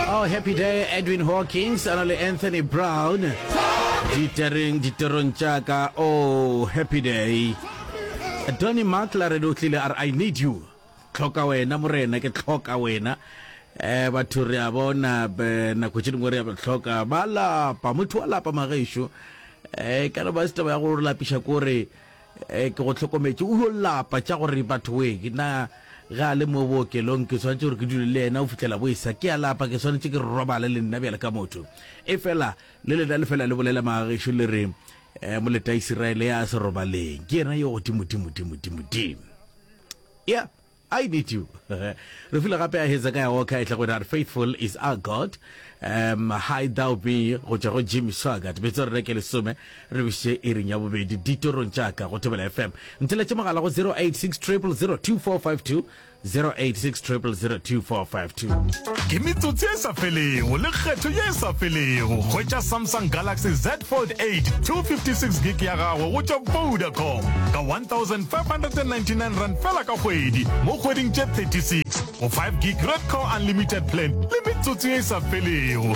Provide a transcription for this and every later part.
Oh, happy day edwin hawkins a na le anthony brown ditereng diterong tša ka oh happy day donny makla re di o tlile a re i need you tlhoka wena morena ke tlhoka wena eh batho re a bona be- nako tše dingwe re a ba tlhoka ba lapa motho wa lapa magešo eh ka re ba se taba ya go re lapiša kore Ee, ke go hlokometše. O yo lapa tša go re, Bathoweek, na ge a le mo bookelong ke swanetše gore ke dule le yena go fihlela boesa? Ke a lapa ke swanetše ke robale le nna bjalo ka motho. Efela le lena le fela le bolela magagešo le re, Ee, moletaisiraele ya a se robaleng, ke yena yo godimodimodimodimodimo. Ya. I need you Re file gape a Hezekiah Walker e tla go re Faithful is our God um, Hide Thou Be go tšwa go Jimmy Swaggart betso re reke lesome re biše iring ya bobedi ditorong tša ka go Thobela FM ntheletše mogala go 086 0002452 086 0002452 ke metsotsi e sa felego le kgetho ye e sa felego hwetša samsung galaxy z fold 8 256 gig ya gago go tšwa vodacom ka 1599 rand fela ka kgwedi mo kgweding tše 36 go 5 gig red core unlimited plan le metsotsi ye e sa felego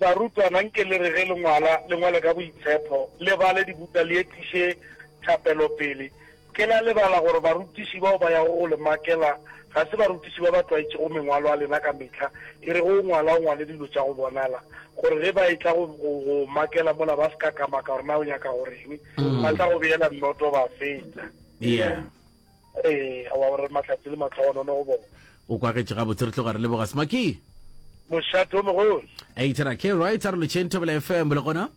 Barutwana, nke le re ge le ngwala, le ngwale ka boitshepho, le bale dibuka, le etiše thapelo pele. Ke la lebala gore barutiši bao ba yago go le makela ga se barutiši ba ba tlwaetšego mengwalo a lena ka mehla. E re ge o ngwala, o ngwale dilo tša go bonala, gore ge ba etla go go makela mola ba se ka ka maka gore na o nyaka go reng, ba tla go beela nnoto ba fetša. Yeah. Ee, a wa gore mahlatse le matlhogonono go bona. O kwagetše gabotse, re tloga re leboga Smaky. Mošate o mogolo. A itera ke right, a re lotšheng Thobela FM le gona.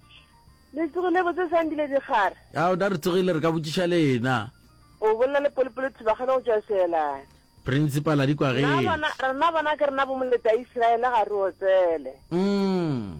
Le tsogile botse Sandile Dikgara. A o da re tsogile re ka botšiša lena. O bolela le Polopolo Thubagane go tšwa Seelane. Principal a di kwageng. Rena bona ke rena bomoleta Isiraele ga re otsele. Mm.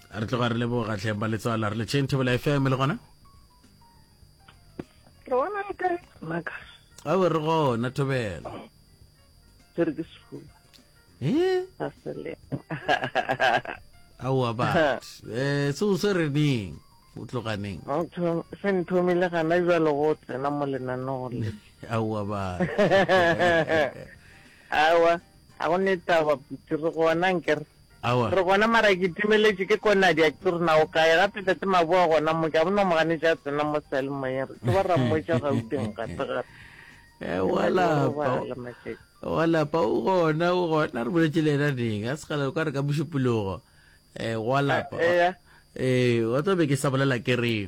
re tloga re leboga tlheng ba letswala re letšheng thobela fm le gona re bona le kae maka a re gona thobela ke re ke sefuba e a sele aowa bat um se o se re neng o tloganeng se nthomile gana jalo go tsena mo lenaneo le aowa ba aowa ga go ne taba putse re gona nkere Aowa. Re gona mara ke timeletše ke ko Nadia ke re na o kae gape tate Maboa gona mo ke a bona o mo ganetše a tsena mo sealemoyeng re tlo ba ra mmotša Gauteng gape gape. Eh, Ke wa na le go lapa. robala matšatši. wa lapa o gona o gona re boletše le yena neng a segala o ka re ka mošupologo um wa lapa Eh, eya. ee wa tswa be ke sa bolela ke re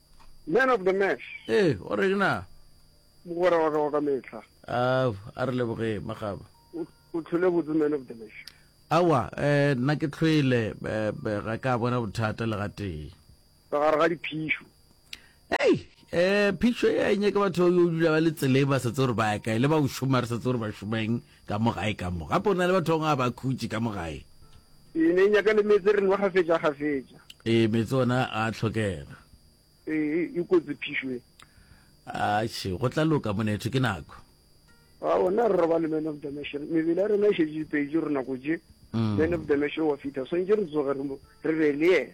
Man of the match. Ee, o reng na? Mogwera wa ka wa ka mehla. A a re leboge magaba. O tlhole botse man of the match. Awa, eh nna ke tlhwele ga ka bona bothata le ga tee. Ka gare ga diphišo. Hey, eh phišo e a nyake batho yo dula ba le tsele ba setse gore ba ya kae le ba o šoma re setse gore ba šomeng. Ka mo gae ka mo. Gape o na le batho ba bangwe a ba khutše ka mo gae. Ee, ne e nyaka le meetse re nwa gafetša gafetša. Ee, meetse ona a a tlhokega. Ee, e kotsi phišo e. Atšhe, go tla loka monetho, ke nako. A ona re robale man of the match. Mebele ya rena e šetše dipeitše gore nako tše. Man of the match o wa fitha. Swantše re tsoge re mo re be le yena.